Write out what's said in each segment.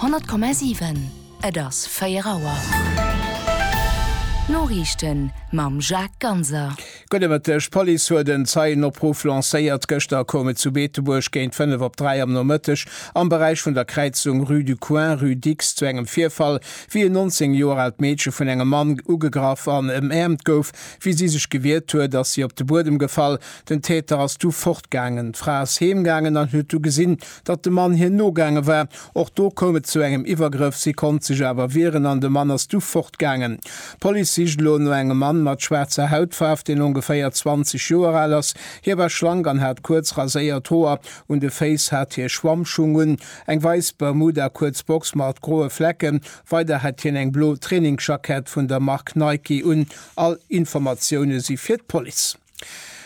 100,7 Et ass 4 Auer. D'Noriichten mam Jacques Ganser. Gudde Mëtteg. D'Police huet en Zeienopruff lancéiert. Gëschter koum et zu Beetebuerg géint 5 op 3 am Nomëtteg am Beräich vun der Kräizung Rue du Coin, Rue Dix zu engem Virfall, wéi en 19 Joer aalt Meedche vun engem Mann ugegraff an ëmäermt gouf. Wéi si sech gewiert huet, ass si op de Buedem gefall. Den Täter ass du fortgaangen. D'Fra ass heemgaangen an huet du gesinn, datt de Mann hir nogaange war. Och do koum et zu engem Iwwergrëff. Si konnt sech awer wieren an de Mann ass du fortgaangen. D'Police sicht elo no engem Mann mat schwaarzer Hautfaarf, deen ongeféier 20 Joer al ass. Hie war schlank an hat kuerz raséiert Hoer. Un de Féiss hat hie Schwammschung un, eng weis Bermuda, kuerz Box mat groe Flecken. Weider hat hien eng blo Trainingsjackett vun der Mark Nike un. All Informatioune si fir d'Police.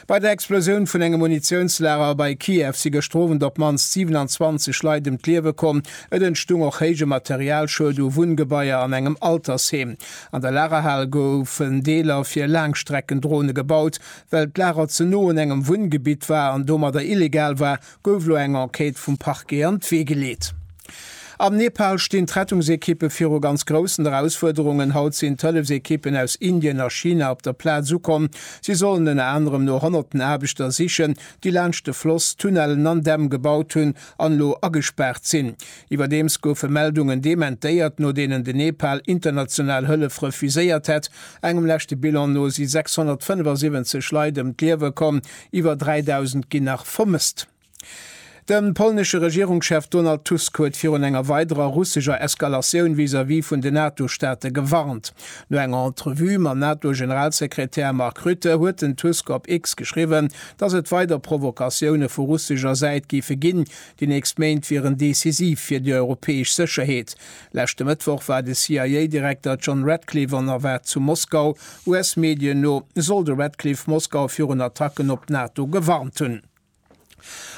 Bei der Explosioun vun engem Munitiounslager bei Kiew si gëschter Owend op d'mannst 27 Leit ëm d'Liewe komm. Et entstung och héije Materialschued u Wunngebaier an engem Altersheem. An der Lagerhal goufen Deeler fir Laangstreckendrone gebaut. Well d'Lager ze no un engem Wunngebitt war an domadder illegal war, Gouf elo eng Enquête vum Parquet an d'Wee geleet. Am Nepal stinn d'Rettungsekippe viru ganz groussen Erausfuerderungen. Haut sinn d'Hëllefsekippen aus Indien a China op der Plaz ukomm. Si sollen ënner anerem no honnerten Aarbechter sichen, déi laanscht de Floss Tunnellen an Dämm gebaut hunn an elo agespaart sinn. Iwwerdeems goufe Meldungen dementéiert, no deenen de Nepal international Hëllef refuséiert hätt. Engem leschte Bilan no si 675 Leit ëm d'Liewe komm, Iwwer 3.000 ginn nach vermësst. De polnesche Regierungschef Donald Tusk huet virun enger weiderer russescher Eskalatioun vis-à-vis vun den NATO-Staate gewarnt. No enger Entrevue mam NATO-Generalsekretär Mark Rutte huet den Tusk op X geschriwwen, datt et weider Provokatioune vu russescher Säit géife ginn. Déi nächst Méint wieren decisiv fir déi europäesch Sécherheet. Leschte Mëttwoch war de CIA-Direkter John Ratcliffe an erwaart zu Moskau. US-Medien no soll de Ratcliffe Moskau virun Attacken op d'NATO gewarnt hunn.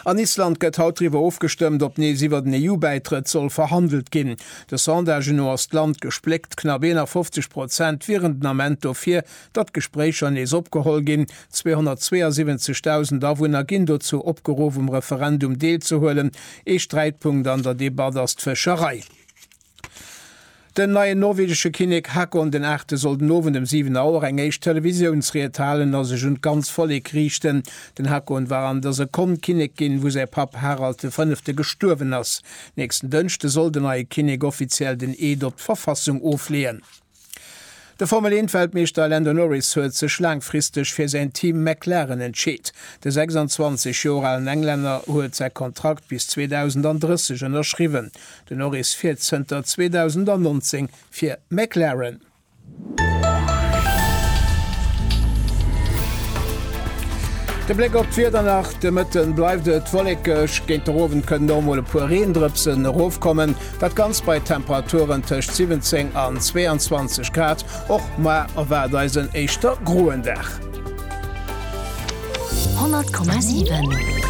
An Island gëtt haut driwwer ofgestëmmt, ob nees iwwer den EU-Bäitrëtt soll verhandelt ginn. De Sondagen no ass d'Land gespléckt, knapp 51 Prozent wieren den Ament dofir, Datt d'Gespréicher nees opgeholl ginn. 272.000 Awunner ginn dozou opgeruff, um Referendum deelzehuelen. Ee Sträitpunkt an der Debatt ass d'Fëscherei. Den neien norwegesche Kinnek Haakon den Aachte soll den Owend ëm 7 Auer eng éischt Televisiounsried halen a sech un d'ganzt Vollek riichten. Den Haakon war an der Sekonn Kinnek ginn, wou säi Papp Harald de Fënnefte gestuerwen ass. Nächsten Dënschde soll den neie Kinnek offiziell den Eed op d'Verfassung ofleeën. De Formel-Eent-Weltmeeschter Lando Norris huet sech laangfristeg fir säin Team McLaren entscheet. De 26 Joer alen Englänner huet säi Kontrakt bis 2030 ënnerschriwwen. Den Norris fiert zënter 2019 fir McLaren. De Bléck op d'Wieder nach, De Mëtten bleift et wollekeg, géint den Owend kënnen och mol e puer Reendrëpsen erofkommen. Dat Ganzt bei Temperaturen tëscht 17 an 22 Grad. Och muar erwaart eis en éischter groen Dag. 100,7.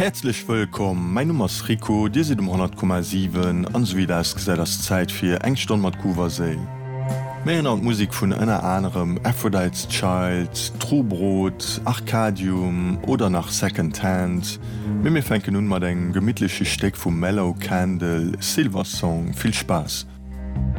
Häerzlech wëllkomm, mäin Numm ass Rico, dir sidd um 100,7 an esou wéi et ausgesäit ass Zäit fir eng Stonn mat Groove a Séil. Mir héieren an d'Musek vun ënner anerem Aphrodite's Child, True Brot, Arcadium oder nach Second Hand, mee mir fänken un mat engem gemittleche Stéck vum Mellow Candle, Silver Song. Vill Spaass!